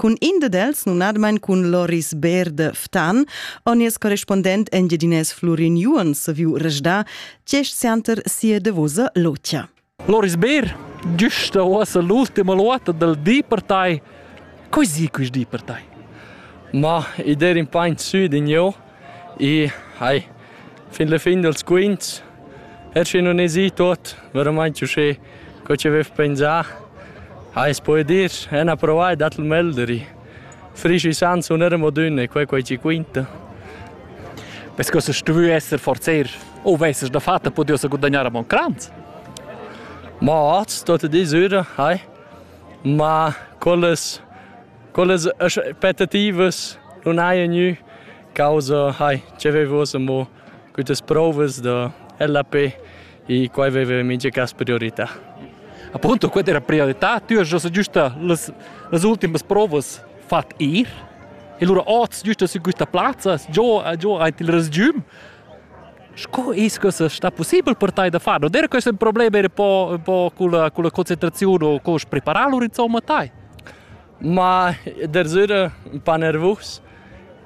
Cun in dad els, numnadamain cun Loris Beer de Ftan, on nies correspondent engiadinés Flurin Juon saviu resdar gest seanter sia davosa lotia. Loris Beer, giusta ossa l'ultima luota dal di per tai. Così quis di per tai? Ma, id er in paint sud in jeu, I hai fin la fin dals quints er schi nun esi tuot veramaint uschè co chi avev pensà. Ais po dir, en ha provà e dat il melderi. Frisch isan sun er amo dünna e quai quai chi quinta. Vess que stuvü esser forzer o vessas da fatta pudeu sa gudagnar a Moncrans? Ma hoz, tot e disüra, hai. Ma quellas Quellas aspettativas non haja gnü causa hai ch'avevas amo quittas prouvas da LAP e quai aveva mincha cas priorità. Appunto, quella era priorità. Tu hast giusta giusta las, las ultimas provas fat ir. E lura oz giusta su questa plazza, giò, giò aint il resgium. Sco es questa sta possibel per tai da far? Non era questo un problema un po', un po' con, la, con la concentrazione o con preparar lur insomma tai? Ma dersüra ün pa nervus,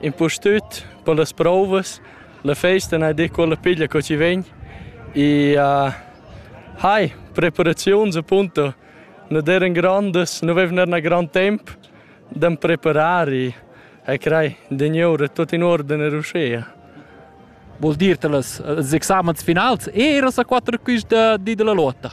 impustüt per las prouvas. La festa n'ha dit quella piglia co chi vegn e uh, hai preparaziuns appunto non eran grandas, non avevano un gran tempo da preparare e crei degneure tutto in ordine riuscea. Vuol dir che els examens finals eras a quattro quist di della lotta?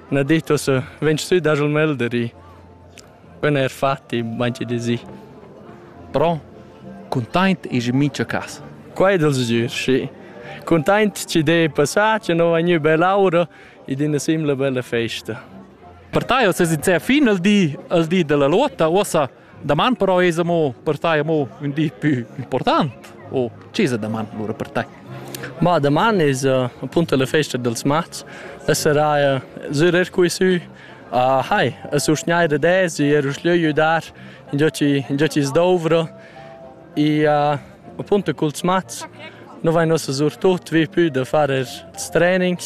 Na detto se, vegn sü dagl melderi. Quel eir fatti, manchi di si. Però cuntaint esa mincha cas. Quai dal sgür, schi. Cuntaint ci d'he passà, che no va gnü bell'aura ed ina simla bella festa. Per tai es es in fino al di, al di della lotta, uossa Daman però es amo per tai amo ün di pü important? O chi es daman lura per tai? Ma daman es uh, appunto la festa dels mats. La seraia sürer qui sü. Uh, hai, a susgnair da des e er schlieu dar in già ci in già ci sdovro. E uh, appunto culs mats no vai nos sur tut vi pü da far er training.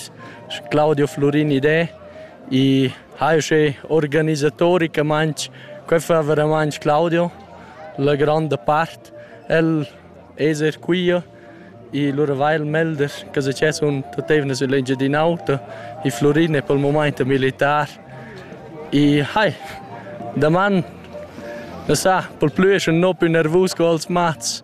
Claudio Florin idee I ha uschè organisatoricamaing que fa veramaing Claudio la gronda part. El es eir quia e lura va el melder che success sun tuot eivna sül Engiadin'Auta. I Flurin è pel mumaint ün militar e hai, daman, na sa, pel plü es ün no più nervus co als mats.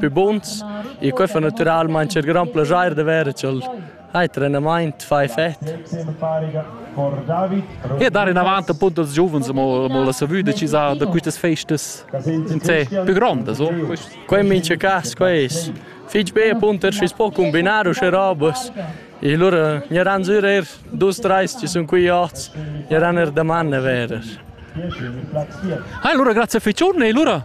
Pü buns. E quai fa natüralmaing cher grand plaschair da verer cha'l ha trenamaint fa effet. E dar inavant appunto als giuvens mo, mo la savüda chi sa da quistas festas in sé più grondas. Oh. Quai in mincha cas, quai es fich be appunto er schi's po combinar uschè robas. E lura gnaran sür eir dus trais chi sun qui ots, gnaran er daman a verer. Hai, allora grazie a Ficiurne e lura